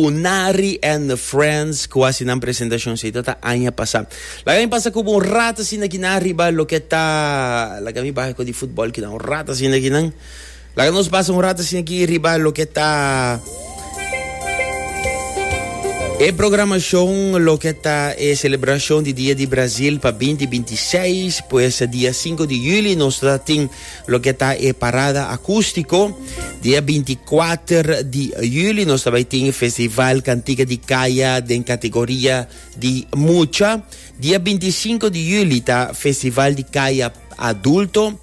Unari and Friends cu haci nan presentacion asina ta ta aña pasa. Laga mi pasa como un rat asina akinan riba loke ta laga mi baha e cos di futbol kinan un rat asina akinan laga nos pasa un rat asina aki riba loke ta e programacion loke ta e celebracion di dia di Brazil pa binti binti seis pues dia sinku di juli nos ta tin Loke ta e parada acústico, di e binti kuater di juli nos ta bai tin e festival Cantiga di Kaya den kategoria di mucha. Di e binti sinku di juli ta festival di kaya adulto.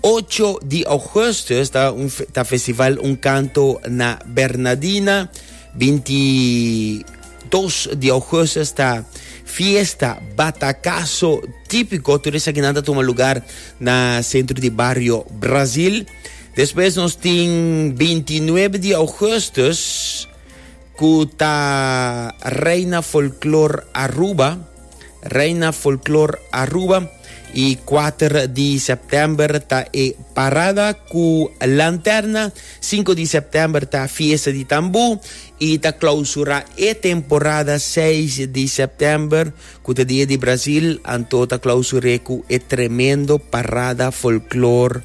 Ocho di augustus ta un ta festival Un Kanto na Bernadina. Binti Dos di Augustus ta fiesta batacazo tipico. Tur esaki nan ta tuma lugar na centro di barrio Brasil. Despues nos tin 29 di Augustus cu ta Reina Folklor Aruba. Reina Folklor Aruba. Y 4 di September ta e parada cu lanterna. 5 di September ta fiesta di tambu. y ta clausura e temporada seis di september cu ta dia di Brasil, anto ta clausure cu e tremendo parada folklor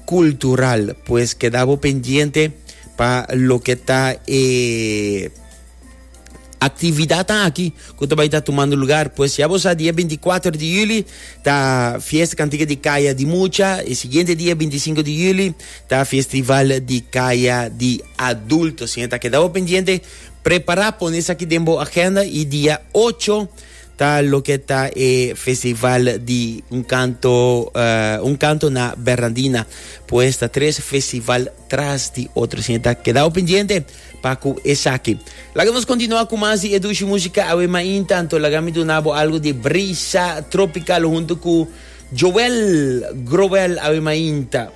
cultural. Pues keda bo pendiente pa loke ta e actividadnan aki cu ta bay ta tumando lugar. Pues ya bo sa dia binticuater di juli ta fiesta cantica di Kaya di Mucha, e siguiente dia bintisinco di juli Ta Festival di Kaya di Adulto, sin esta keda bo pendiente, prepara pone esaki den bo agenda y dia ocho ta loke ta e Festival di un canto uh, un canto na Bernardina, pues ta tres festival tras di otro, sin esta keda bo pendiente pa cu esaki. Laga nos continua cu mas di Edushi Musica awe maintanto laga mi duna bo algo di Brisa Tropical hunto cu Joel Groel awe mainta.